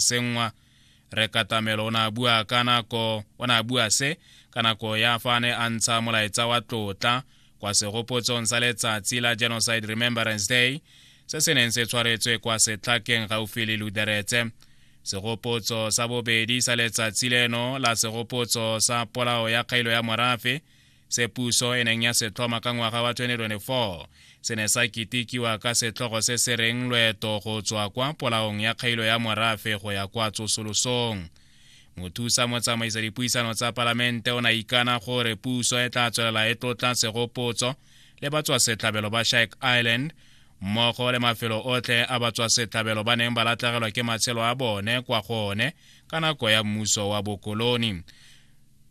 senngwa re katamelo o ne a bua ka nako o ne a bua se ka nako ya fa a ne a ntsha molaetsa wa tlotla kwa segopotsong sa letsatsi la genocide remembrance day se se neng se tshwaretswe kwa setlhakeng gaufi le luderetse segopotso sa bobedi sa letsatsi leno la segopotso sa polao ya kgailo ya morafe se puso e neng ya se tlhoma ka ngwaga wa 2024 se ne sa kitikiwa ka setlhogo se se reng loeto go tswa kwa polaong ya kgailo ya morafe go ya kwa tsosolosong mothusa motsamaisa dipuisano tsa palamente o ne ikana gore puso e tla tswelela e tlotla segopotso le batswasetlhabelo ba shike island mmogo le mafelo otlhe a batswasetlhabelo ba neng ba latlhegelwa ke matshelo a bone kwa go one ka nako ya mmuso wa bokoloni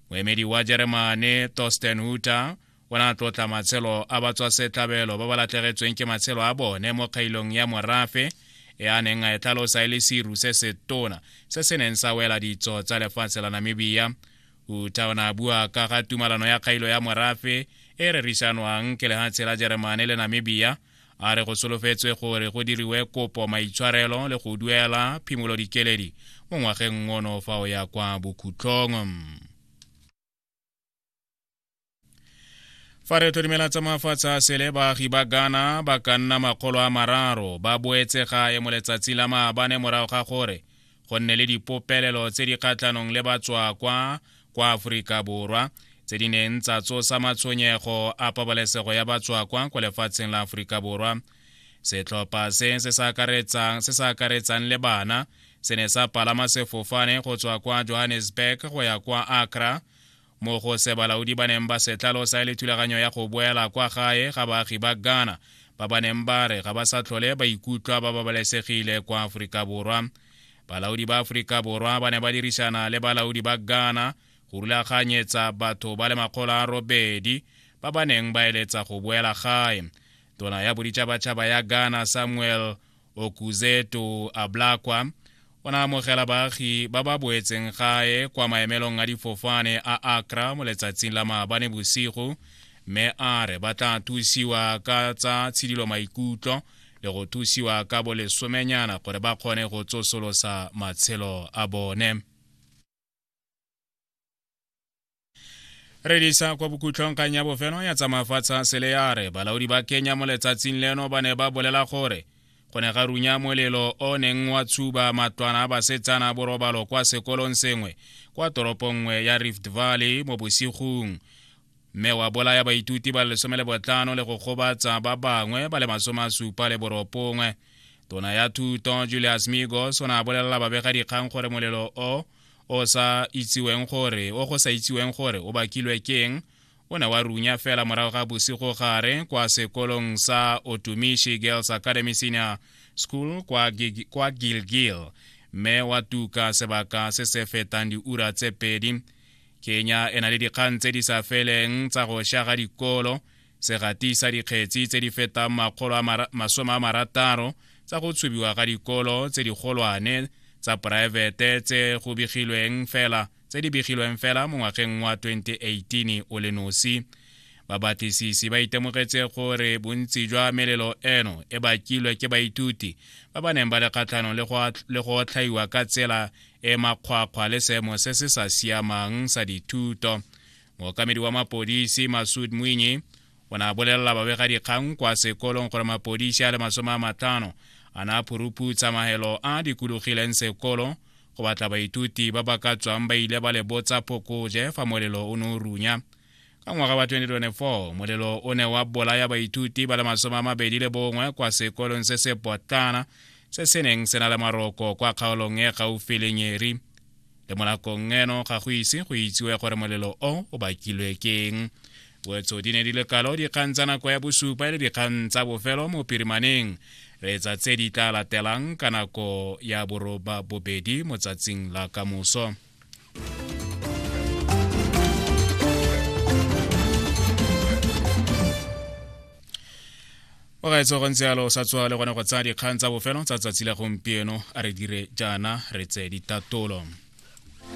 moemedi wa jeremane torsten huter o ne a tlotla matshelo a batswasetlhabelo ba ba latlhegetsweng ke matshelo a bone mo kgailong ya morafe e a neng a e tlhalosa e le seru se se tona se se neng sa wela ditso tsa lefatshe la namibia uta o ne a bua ka ga tumalano ya kgailo ya morafe e rerisanwang ke lehatshe la jeremane le namibia a re go solofetswe gore go diriwe kopo maitshwarelo le go duela phimolo dikeledi mo ngwageng ono fa o ya kwa bokhutlhong fa re tlo dimela tsa mafatshe a sele baagi ba ghana ba ka nna makgolo a mararo ba boetse gae mo letsatsi la maabane morago ga gore go nne le dipopelelo tse di kgatlhanong le batswakwa kwa aforika borwa tse di neng tsa tsosa matshwenyego a pabalesego ya batswakwa kwa lefatsheng la aforika borwa setlhopha se se sa akaretsang le bana se ne sa palama sefofane go tswa kwa johannesburg go ya kwa accra mo go se balaodi ba neng ba se tlalosa e le thulaganyo ya go boela kwa gae ga baagi ba ghana ba ba neng ba re ga ba sa tlhole ba ikutlwa ba babalesegile kwa aforika borwa balaodi ba aforika borwa ba ne ba dirisana le balaodi ba ghana go rulaganyetsa batho ba le makgolo a robedi ba ba neng ba eletsa go boela gae tona ya boditšhabatšhaba ya ghana samuel okuzeto ablakwa o na amogela baagi ba ba boetseng gae kwa maemelong a difofane a akra mo letsatsing la maabane bosigo mme a re ba tla thusiwa ka tsa tshidilo maikutlo le go thusiwa ka bolesomenyana gore ba kgone go tsosolosa matshelo a bone re disa kwa bokhutlhong kgang ya bofelo ya tsamafatsha sele ya re balaodi ba kenya mo letsatsing leno ba ne ba bolela gore go ne ga runya molelo o neng wa tshuba matlwana a basetsana borobalo kwa sekolong sengwe kwa toropong nngwe ya rift valley mo bosigong mme wa bolaya baithuti ba lesome le botlano le go gobatsa ba bangwe ba le masome a supa le boropongwe tona ya thuto julius migos o ne a bolelela babegadikgang gore molelo o o sa itsiweng gore o go sa itsiweng gore o bakilwe keng o ne wa runya fela morago ga bosigo gare kwa sekolong sa otumishi girls academy senior school kwa, gig, kwa gilgil mme wa tuka sebaka se se fetang diura tse pedi kenya e na le dikgang tse di sa feleng tsa go sha ga dikolo se gatisa dikgetsi tse di fetang makgolo a masome a marataro tsa go tshubiwa ga dikolo tse digolwane tsa poraefete tse go begilweng fela tse di begilweng fela mo ngwageng wa 2018 o le nosi babatlisisi ba itemogetse gore bontsi jwa melelo eno e bakilwe ke baithuti ba ba neng ba le kgatlhanong le go otlhaiwa ka tsela e makgwakgwa le seemo se se sa siamang sa dithuto mookamedi wa mapodisi masud mwinyi o ne a bolelela babegadikgang kwa sekolong gore mapodisi a le masome a matlhano a ne a phuruphutsa mahelo a a dikologileng sekolo go batla baithuti ba ba ka tswang ba ile ba le botsa phokoje fa molelo o ne o runya Ka ngwaga wa 2024 molelo o ne wa bolaya baithuti ba le masome a mabedi le bongwe kwa sekolong se se potlana se se neng se na le maroko kwa kgaolong e gaufi le nyeri le mo nakong eno ga go ise go itsiwe gore molelo o o bakilwe keng wetso di ne di le kalo dikgang tsa nako ya bosupa e le dikgang tsa bofelo mo pirimaneng re etsa tse di tla latelang ka nako ya boroba bobedi mo tsatsing la kamoso o ga etse go ntse yalo sa tswa le gone go tsaya dikgang tsa bofelo tsa tsatsi la gompieno a re dire jaana re tseye ditatolo